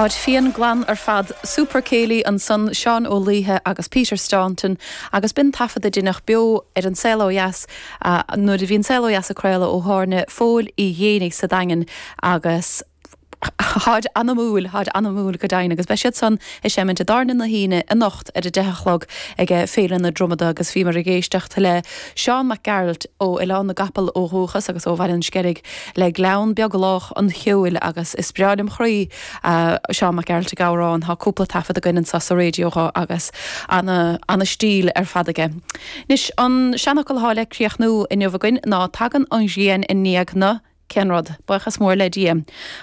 Táid fiain glan ar fad, Super Céilí ansan Seán Ó Liatháin agus Peter Staunton agus b'in taifead a deineadh beo ar An Saol Ó Dheas nuair a bhí An Saol Ó Dheas á chraoladh ó thábhairne Phóil Uí Ghéibheannaigh sa Daingean agus táid anamúil, táid anamúil go deimhin agus beidh siad san ag seimint i dTábhairne na hUíne anocht ar a deich a chlog ag Féile na Dromoda agus bhíomar ag éisteacht le Seán Mac Gearailt ó Oileán na gCapall ó dhúchas agus ó Bhaile an Sceilg. le Gleann Beag Lách an Cheoil agus is breá lem chroí Seán Mac Gearailt ag amhrán thá cúpla taifead againn anseo sa radio dho agus ana ana stíl ar fad aige. Anois an seanfhocal thá le críochnú inniu againn ná Tagann an ghrian i ndiaidh na cén rud? Buíochas mór le Dia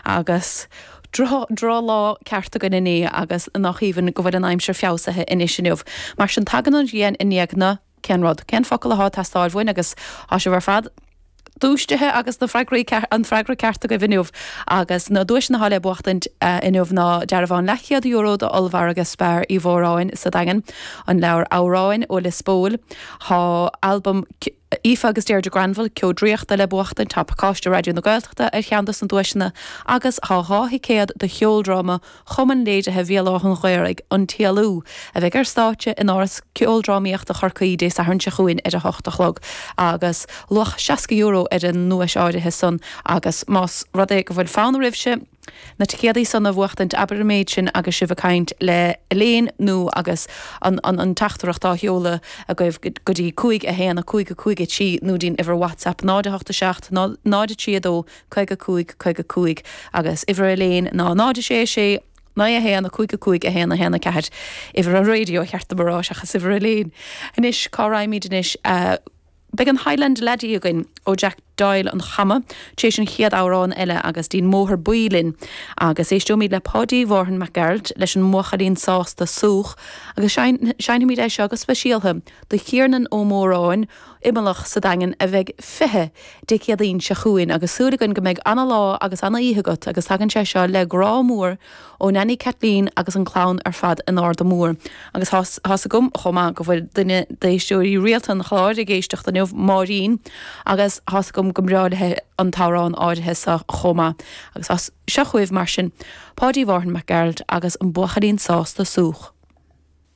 agus droch lá ceart againn inné agus nách aoibhinn go bhfuil an aimsir feabhsaithe anois inniu mar sin tagann an ghrian i ndiaidh na cén rud, cén focal athá ag teastáil uainn agus thá sibh ar fad dúistithe agus na freagraí, an freagra ceart agaibh inniu. Agus na duaiseanna athá le buachtaint inniu ná dearbhán leathchéad euro d'Ollmhargadh Spar Uí Mhóráin sa Daingean, an leabhar Amhráin ó Lios Póil, thá albam Aoife agus Deirdre Granville, Ceo Draíochta le buachtaint, thá pacáiste Raidió na Gaeltachta ar cheann dos na duaiseanna agus thá dhá thicéad do cheoldráma Chumann Léirithe Bhéal Átha'n Ghaorthaidh, An Téalú, a bheidh ar stáitse in Áras Ceoldrámaíochta Chorcaí Dé Sathairn seo chugainn ar 8 a chlog agus luach €60 ar an nduais áirithe san agus más rud é go bhfuil fonn oraibhse na ticéadaí san a bhuachtaint abair an méid sin agus sibh ag caint le hElaine nó agus an teachtaireacht á sheoladh agaibh go dtí 51553 nó dtí'n uimhir WhatsApp 0 8 7 0 3 2 55, caoga cúig, agus uimhir Elaine ná 0, 6, 6, naoi, a haon, a cúig, a cúig, a haon, a haon, a ceathair, uimhir an radio ba cheart dom a rá seachas uimhir Elaine. Anois, cá raghaimíd anois? Beidh an Highland Laddie againn ó Jack Doyle an Chama tar éis an chéad amhrán eile agus dtí'n mBóthar Buí linn agus éisteoimíd le Páidí Mhárthain Mac Gearailt leis an mBuachaillín Sásta Súch agus seinnfimíd é seo go speisialtha do Thiarnan Ó Móráin Imileach sa Daingean a bheidh 20 Dé Céadaoin seo chugainn agus súil againn go mbeidh ana-lá agus ana-oíche agat agus tagann sé seo le grá mór ó Neainí Caitlín agus an clann ar fad in Arda Mór. Agus tá's agam chomh maith go bhfuil duine d'éisteoirí rialta an chláir ag éisteacht inniu, Máirín, agus tá's agam go mba bhreá léi an t-amhrán áirithe seo chomh maith. Agus seo chugaibh, mar sin, Páidí Mhárthain Mac Gearailt agus An Buachaillín Sásta Súch.